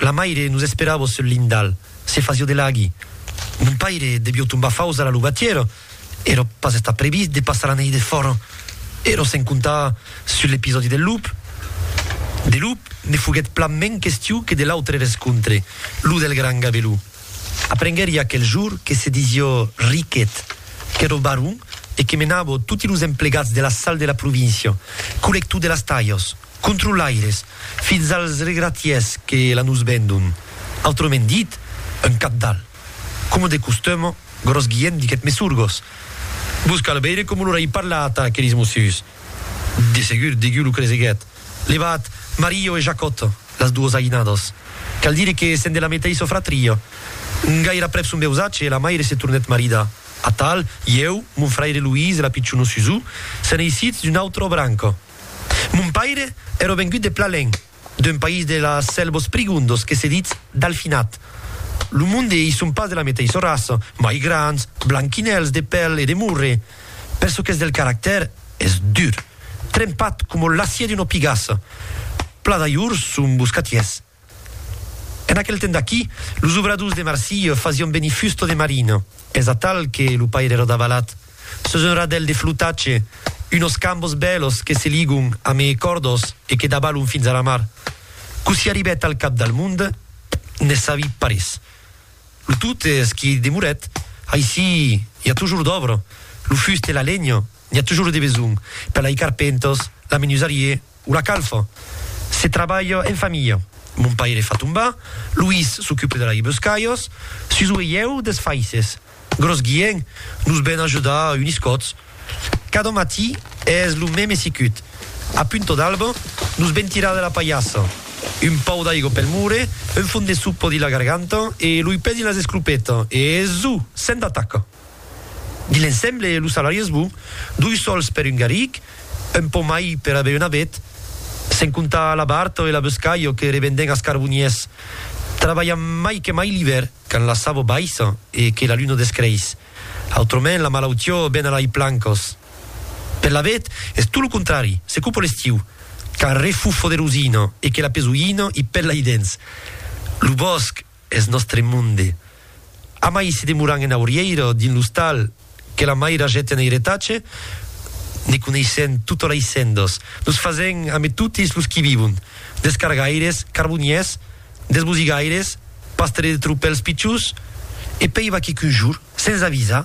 La maire nos esperavo sul lindal, se fasio de laghi. Mon paire devió tombar faus a la luvatièra, èra pas estat previst de passar la nèit defòra. Èra sen comptar sul episòdi del lup. De lup ne foguèt plan mens question que de l'autre rescontre, lo del gran Gabelou. Aprenguèri aquel jorn que se disió Riquet, qu'èra baron e que menava toti los emplegats de la sal de la província, colector de las talhas. controlaires, fins als regratiers que la nos vendon, autrement dit, un cabdal. Coma de costum, Gròs Guilhèm diguèt Mesurgos, Vos cal veire coma lor ai parlat a aqueris mossuts. De segur, degun lo creseguèt, levat Mario e Jacòt, las duos aïnados. Cal dire que sèn de la meteissa fratria. Gairaprèp son veusatge, la maire se tornèt maridar. Atal, ieu, mon fraire Luís e la pichona Susù, sèn eissits d'una autra branca. Mon paire ère vengut de Plalenc, d'un país de las Sèlvos Prigondos que se ditz Dalfinat. Lo monde i son pas de la meteissa raça, mai grands, blanquinèls de pèl e de morre, per çò qu'es del caractèr, es dur, trempat coma l'acier d'una pigassa. Pla d'ajors son boscatiers. En aquel temps d'aquí, los obradors de Marsilh fasián venir fusta de marina, es atal que lo paire era davalat, sus un radèl de flotatge, unos cambos bèlos que se ligon amé còrdos e que davalon fins a la mar. Cossí arribèt al cap del monde, ne sabi parés. Lo tot es qu'i demorèt. Aicí i a tojorn d'òbra, lo fust e la lenha, n'i a tojorn de besonh, per lai carpenters, la menusarier, O la calfa, se trabalha en familha. Mon paire fa tombar, Luís s'ocupe de la ibescalhas, Suso e ieu des faisses. Gros guien, nos ven ajudar unis còts. Cada matí es lo meme sicut. A punta d'alba, nos ven tirar de la palhassa. Un pau d'aiga pel mure, un fon de sopa dins la garganta e lo ipè dins las esclopetas e, zu! Sèm d'ataca! Di l'ensemble e lo salari es bon, doi sòls per un garric, un pò mai per aver una bet, sen comptar la barta e la boscalha que revenden as carboniers. Trabalhan mai que mai l'ivèr, quand la savo baissa e que la luna descreis. Autrament la malautiá ven a lai plancas. Per la bet es tot lo contrari, se copa l'estiu, quand refufo de rosina e que la pesoina i pèla i dens lo bòsc. Eth nòstre monde. Amai se demoran en aurièira o dins l'ostal que la mair ajèt en eiretatge, ne coneissèm tota la issendos, nos fasèm ame totis los qui vivon, des cargaires, carboniers, des bosigaires, pastres de tropèls pichons, e pei va quicun jour, sens avisar,